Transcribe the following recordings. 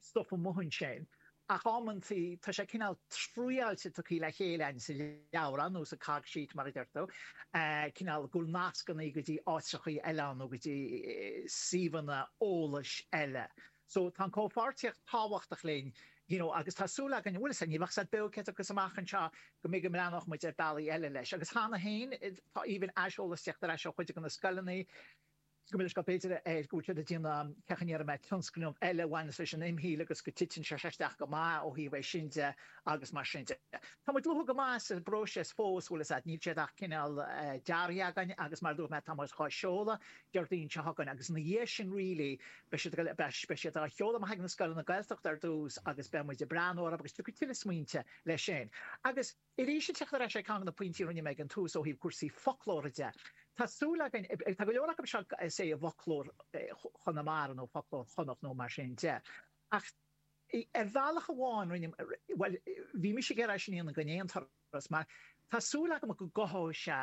stuif amuigh ansin ach amantaí tá sé cineál triáilte tugtha le chéile againn sa leabhrán nó sa cog sheet mar a deirtear, cineál gur nascanna í go dtí áiteacha eile nó go dtí suíomhanna eolais eile. So tá an comhpháirtíocht tábhachtach linn you know agus tá súil againn, bhfuil 'fhios a'd, ní bheadh 's a'm beo cé acu amach anseo go mbeidh, go mbreathnódh muid ar bealaí eile leis agus cheana féin tá an aiseolas ag tíocht ar ais ó chuid de na scoileanna, go mbaineann leis gá, b'fhéidir, go bhfuil siad ag déanamh cé acu an iarrfaidh mé tionscnamh eile a bhaineas leis an imshaoil agus go titeann sé isteach go maith ó thaobh é sin de agus mar sin de. Tá muid luath go maith sa bpróiseas fós, bhfuil 'fhios a'd, níl siad ach cineál deartha againn agus mar a dúirt mé tá muid dhá sheoladh Déardaoin seo chugainn agus ina dhiaidh sin really beidh siad beidh siad á sheoladh amach chuig na scoileanna Gaeltachta ar dtús agus beidh muid ag breathnú orthu agus tiocfaidh tuilleadh smaointe leis sin agus Arís, ag teacht ar ais chuig ceann de na pointí a rinne mé ag an tús ó thaobh cúrsaí foclóra de, tá súil againn, tá go leor acu seo is é i bhfoclóir Chonamara nó foclóir Chonnacht nó mar sin de, ach ar bhealach amháin rinne, bhuel, bhí mise ag iarraidh é sin a dhéanamh d'aon turas mar tá súil agam go gcothóidh sé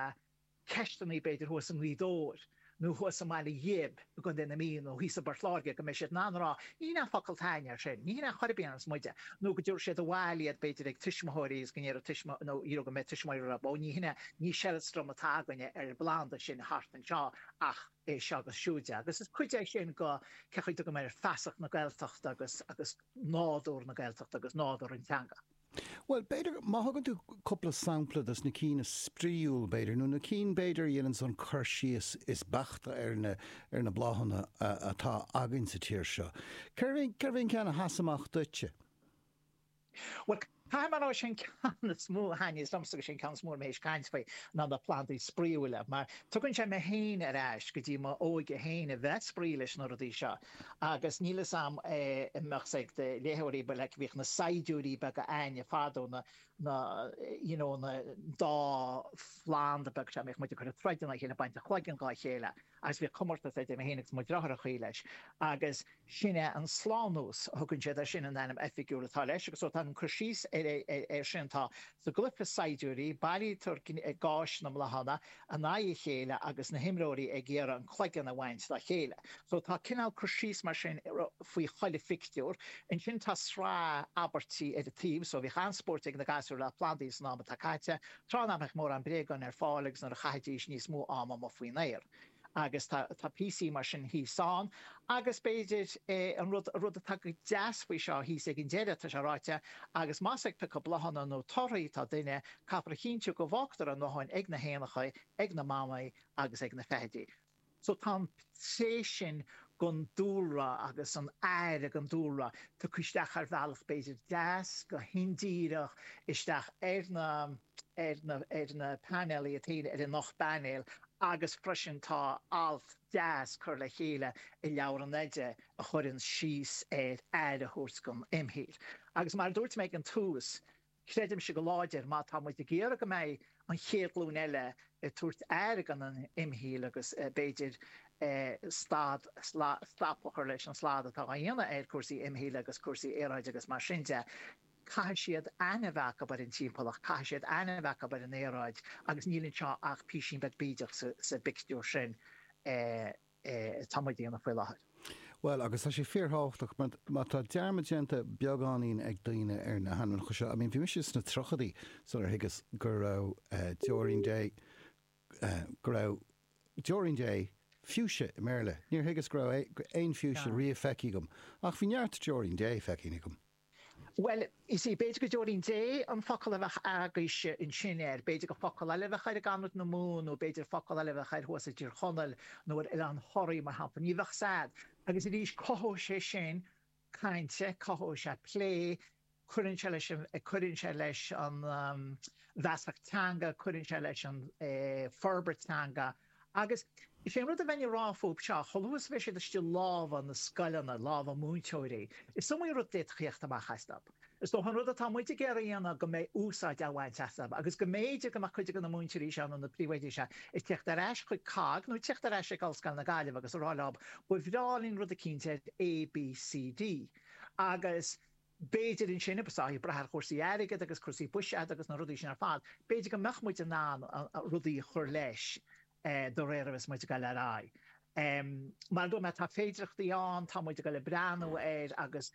ceisteannaí b'fhéidir thuas i nGaoth Dobhair nó thuas i mBaile Ghib i gContae na Mí nó thíos i bPort Láirge go mbeidh siad in ann a rá, ní hin é an focal atá againne air sin, ní hin é chor ar bith a déarfas muide, nó go dtabharfaidh siad abhaile iad b'fhéidir chuig tuismitheoirí agus go ndéarfaidh tuismitheoirí nó go mbeidh tuismitheoirí a rá ó, ní hin é, ní seileastram atá againne ar an bplanda sin thart anseo ach é seo agus siúd agus is cuid é sin de cé chaoi a dtugaim air feasacht na Gaeltachta agus agus nádúr na Gaeltachta agus nádúr an teanga. Bhuel, b'fhéidir, má thugann tú cúpla sampla de na cinn is spraíúla, b'fhéidir, nó na cinn, b'fhéidir, a dhéananns an cur síos is beaichte ar na, ar na bláthanna atá againn sa tír seo. Cérbh é, cérbh é an ceann a sheas amach duitse? Bhuel, caithfidh mé a rá, sé an ceann is mó a thaitníos liomsa, agus sé an ceann is mó atá mé théis caint faoi, ná na plandaí spraíúla, mar tugann sé mé féin ar ais go dtí m'óige féin, a bheith ag spraoi leis na rudaí seo. Agus níl fhios a'm an mbeadh sé ag do léitheoirí, but like bhíodh na saighdiúirí beaga againne fadó, na, na, you know, na dá phlanda beaga seo, bhíodh muid ag cur ag troid ina chéile, baint an chloigeann dhá chéile, agus bhíodh comórtas idir mé féin agus mo dhriotháir i gcónaí leis, agus sin é an slánlus, a thugann siad air sin an ainm oifigiúil atá leis, agus so tá an cur síos ar, ar, ar sin, tá Sa gcluiche saighdiúirí, buailtear gais na mbláthanna in aghaidh a chéile agus na himreoirí ag iarraidh an cloigeann a bhaint dá chéile. So tá cineál cur síos mar sin faoi chuile phictiúr. Ansin tá sraith abairtí ar an taobh, so bhíodh an-spóirt ag na gasúir le plandaí san am atá caite. Tráth nach mbíodh mórán bréagán ar fáil agus nuair a chaithidís níos mó ama amuigh faoin aer. Agus tá píosaí mar sin thíos ann. Agus b'fhéidir an rud atá go deas faoi seo thíos ag an deireadh, tá sé ráite, Agus más ag piocadh bláthanna nó torthaí atá duine, caithfear a chinntiú go bhfágtar a ndóthain ag na héanacha, ag na mamaigh agus ag na feithidí. So tá an tréith sin den dúlra agus an aire don dúlra tugtha isteach ar bhealach b'fhéidir deas, go hindíreach, isteach ar na. ar na painéil atá ann ar an ocht bpainéal agus freisin tá alt deas curtha le chéile i leabhar an oide a chuireann síos ar aire a thabhairt don imshaol. Agus mar a dúirt mé ag an tús, creidimse go láidir má tá muid ag iarraidh go mbeidh an chéad ghlúin eile ag tabhairt aire don imshaol agus b'fhéidir stad, stop a chur leis an slad atá á dhéanamh ar cúrsaí imshaoil agus cúrsaí aeráide agus mar sin de, Caithfidh siad aithne a bheith acu ar an timpeallacht, caithfidh siad aithne a bheith acu ar an aeráid agus níl anseo ach písín beag bídeach sa bpictiúr sin atá muid a dhéanamh faoi láthair. Bhuel, agus tá sé fíorthábhachtach mar má tá dearmad déanta beagáinín ag daoine ar na hainmneacha seo, I mean, bhí mise sna tríochaidí sular thuigeas gurbh Deoirín Dé, gurbh Deoirín Dé, fuchsia i mBéarla, níor thuigeas go raibh aon fhiúise riamh feicthe agam ach bhí neart Deoirín Dé feicthe agam. Bhuel, you see, b'fhéidir gur Deoirín Dé an focal a bheadh agaibhse ansin air, b'fhéidir gur focal eile a bheadh air i gConnachta nó Mumhain nó b'fhéidir focal eile a bheadh air thuas i dTír Chonaill nó ar Oileán Thoraí, mar shampla. Ní bheadh a fhios agat. Agus arís, cothóidh sé sin caint, cothóidh sé plé, cuireann sé leis an, cuireann sé leis an, um, an bhfeasacht teanga, cuireann sé leis an, eh, forbairt teanga. Agus is é an rud a bheinn ag rá fúthu seo, chomh luath is a bheidh siad istigh i lámha na scoileanna, lámha múinteoirí, is iomaí rud a d'fhéadfadh a theacht amach astu. Is dócha an rud atá muid ag iarraidh a dhéanamh go mbeidh úsáid á bhaint astu agus go mb'fhéidir go mbeadh cuid de na múinteoirí seo nó na príomhoidí seo ag teacht ar ais chuig COGG nó ag teacht ar ais chuig Ollscoil na Gaillimhe agus ag rá leo, ba bhreá linn rud eicínt ar A, B, C, D agus. B'fhéidir ansin, obviously ag brath ar chúrsaí airgid agus cúrsaí buiséid agus na rudaí sin ar fad, b'fhéidir go mbeadh muid in ann rudaí a chur leis de réir mar a bheas muid ag dul ar aghaidh. Mar a dúirt mé, tá féidireachtaí ann, tá muid ag dul ag breathnú air agus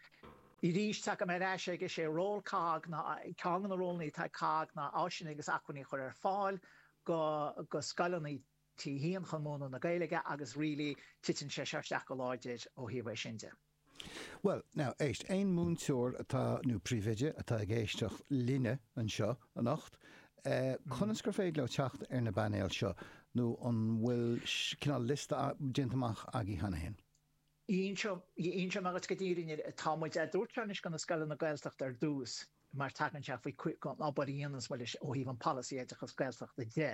arís tagaim ar ais ag, sé ról COGG ná, ceann de na rólannaí atá ag COGG ná áiseanna agus acmhainní a chur ar fáil do scoileanna, T a hAon chun múineadh na Gaeilge agus really titeann sé seo isteach go láidir ó thaobh sin de. Bhuel, now, éist, aon mhúinteoir atá, nó príomhoide, atá ag éisteacht linn anseo anocht, conas gur féidir leo teacht ar na bpainéil seo nó an bhfuil cineál liosta déanta amach agaibh cheana féin? An rud faoi go díreach, tá muid ag tabhairt seo anois do na scoileanna Gaeltachta ar dtús mar tagann sé faoi an obair a dhéananns muid leis ó thaobh an polasaí oideachas Gaeltachta de.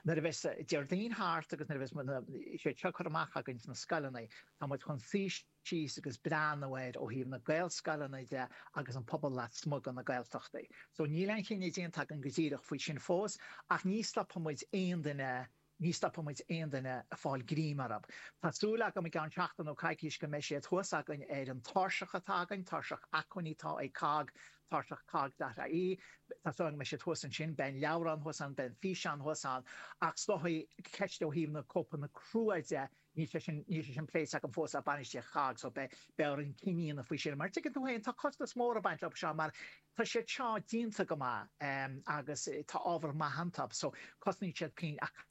Nuair a bheas Déardaoin thart agus nuair a bheas na, sé, siad curtha amach againn sna scoileanna, tá muid chun suí síos agus breathnú air ó thaobh na Gaelscoileanna de agus an pobal lasmuigh de na Gaeltachtaí. So níl aon chinneadh déanta againn go díreach faoi sin fós ach ní stopfaidh muid aon duine Ní stopfaidh muid aon duine ag fáil greim orthu. Tá súil agam i gceann seachtain nó coicís go mbeidh siad thuas againn ar an tairseach atá againn, tairseach acmhainní, atá ag COGG, tairseach COGG dot ie, tá súil agam go mbeidh siad thuas ansin, beidh an leabhrán thuas ann, beidh an físeán thuas ann, ach is dóigh an cheist ó thaobh na cóipeanna crua de Níl sé sin, níl sé sin pléite agam fós le bainistíocht COGG so beidh, beidh orainn cinneadh a dhéanamh faoi sin mar tuigeann tú féin tá costas mór ag baint leo seo mar tá siad seo déanta go maith ehm agus tá ábhar maith iontu so cosnaíonn siad pingin ach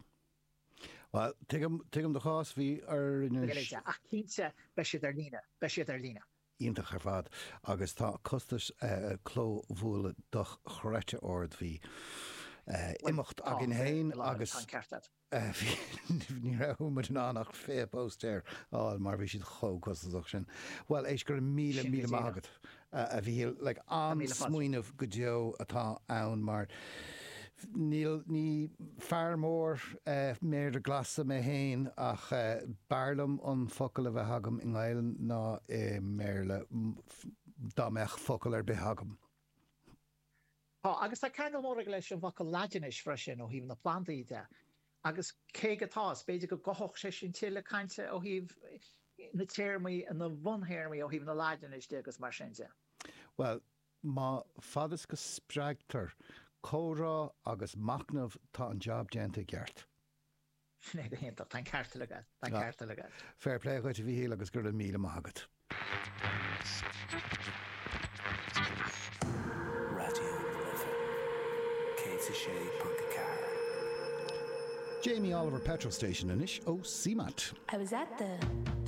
Bhuel, tuigim, tuigim do chás, bhí orainn an. Ach cinnte beidh siad ar líne, beidh siad ar líne. iontach ar fad agus tá costas clóbhuailte dochreidte ard, bhí imeacht againn féin agus. Tá an ceart agat. ní raibh muid in ann ach 20 póstaer a fháil mar bhí siad chomh costasach sin. Bhuel, éist, go raibh míle, Sin é go míle maith díreach. agat, a Mhíchíl. Like, Míle fáilte. an-smaoineamh go deo atá ann mar níl, ní fear mór eh méara glasa mé féin ach eh b'fhearr liom an focal a bheith agam i nGaelainn ná i mBéarla, dá mbeadh focal ar bith agam. Tá, agus tá ceangal mór aige leis an bhfocal Laidine freisin ó thaobh na plandaí de, agus cé go tá, is b'fhéidir go gcothódh sé sin tuilleadh cainte ó thaobh na téarmaí, na buntéarmaí ó thaobh na Laidine de agus mar sin de. Bhuel, a fhad is go spreagtar comhrá agus machnamh tá an jab déanta i gceart. Sin é go hiontach. Tá an ceart agat. Tá an ceart agat. Fair play dhuit, a Mhíchíl, agus go raibh míle maith agat. Raidió na Life 106.4. Jamie Oliver Petrol Station anois ó Seamaint. I was at the.